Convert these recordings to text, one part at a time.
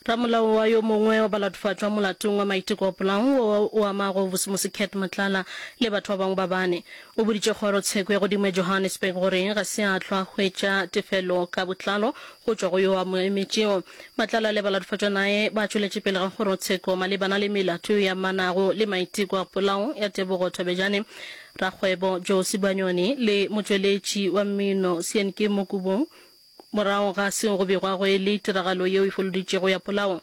Ramolao wa yo mongwe wa balatofatšwa molatong wa maiteko wa polao wo o amago bosemose Cat Matlala le batho ba bangwe ba bane o boditše kgoro tsheko ya godimo ya Johannesburg gore ga se a hlwa hwetša tefelo ka botlalo go tšwa go yo a mo emetšego. Matlala le balatofatšwa nae ba tšweletše pele ga kgoro tsheko malebana le melato e amanago le maiteko a polao ya Tebogo Thobejane, rakgwebo Joe Sibanyoni le motšweletši wa mmino Sienkimu Kubung. Morago ga seo go begwa go e le tiragalo yeo e foloditšego ya polao.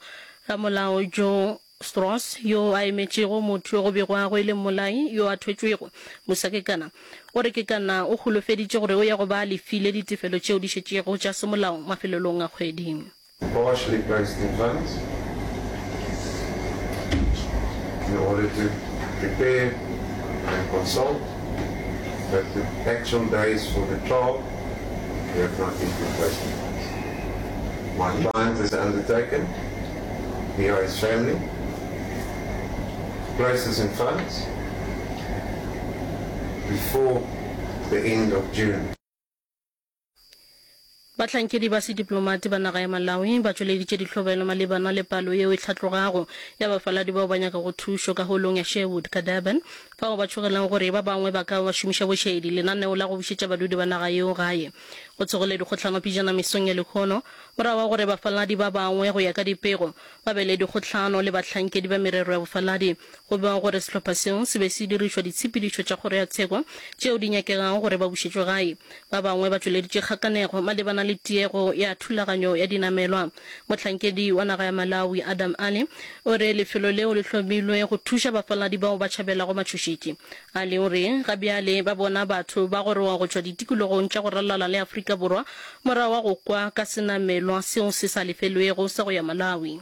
Ramolao Joe Strauss, yo a emetšego motho yo go begwa go e le mmolai yo a thwetšwego, Musakekana, o re Kekana o holofeditše gore o ya go ba a lefile ditefelo tšeo di šetšego tša semolao mafelelong a kgwedi. Bosch le Christ Evans le goletše Prepare and Consult that the actual days for the trial That's not the good question. My client is undertaken. We are his family. Place is in funds before the end of June. Bahlankedi ba sediplomati ba naga ya Malawi ba tšweleditše dihlobelo malebana le palo yeo e hlatlogago ya bafaladi bao ba nyakago thušo ka Holong ya Sherwood ka Durban Bao ba tšhogelago gore ba bangwe ba ka ba šomiša bošaedi, lenaneo la go bušetša badudi ba naga yeo gae go tsogile dikgohlano pejana mesong ya lehono, morago ga gore bafaladi ba bangwe go ya ka dipego ba be le dikgohlano le bahlankedi ba merero ya bofaladi, go bewa gore sehlopha seo se be se dirišwa ditshepedišo tša kgoro ya tsheko tšeo di nyakegago gore ba bušetšwe gae. Ba bangwe ba tšweleditše kgakanego malebana le tiego ya thulaganyo ya dinamelwa. Mohlankedi wa naga ya Malawi, Adam Ali, o re lefelo leo le hlomilwe go thuša bafaladi bao ba tšhabelago matšhošetši. Ali o re ga bjale ba bona batho ba goroga go tšwa ditikologong tša go ralala le Afrika Borwa morago ga go kwa ka senamelwa seo se sa lefelwego sa go ya Malawi.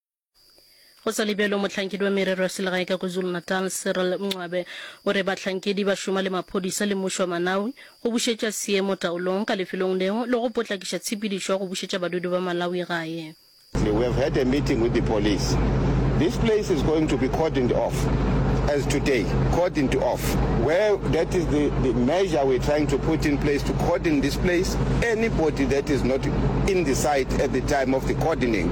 Go sa le bjalo, mohlankedi wa merero ya selegae ka KwaZulu-Natal, Cyril Mncwabe, o re bahlankedi ba šoma le maphodisa le mmušo wa Malawi go bušetša seemo taolong ka lefelong leo le go potlakiša tshepedišo ya go bušetša badudi ba Malawi gae. We have had a meeting with the police. This place is going to be cordoned off as today, cordoned off, where that is the, the measure we're trying to put in place to cordon this place. Anybody that is not in the site at the time of the cordoning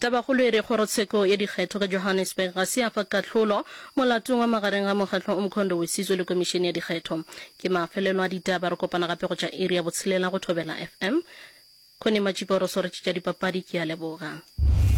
Tabakgolo e re Kgorotsheko ya Dikgetho ka Johannesburg ga se ya fa kahlolo molatong wa magareng ga Mokgatlo o Mkhondo we Sizwe le Komišene ya Dikgetho. Ke mafelelo a ditaba, re kopana gape go tša iri ya botshelela go Thobela FM. Connie Matšipa o re swaretše tša dipapadi, ke a leboga.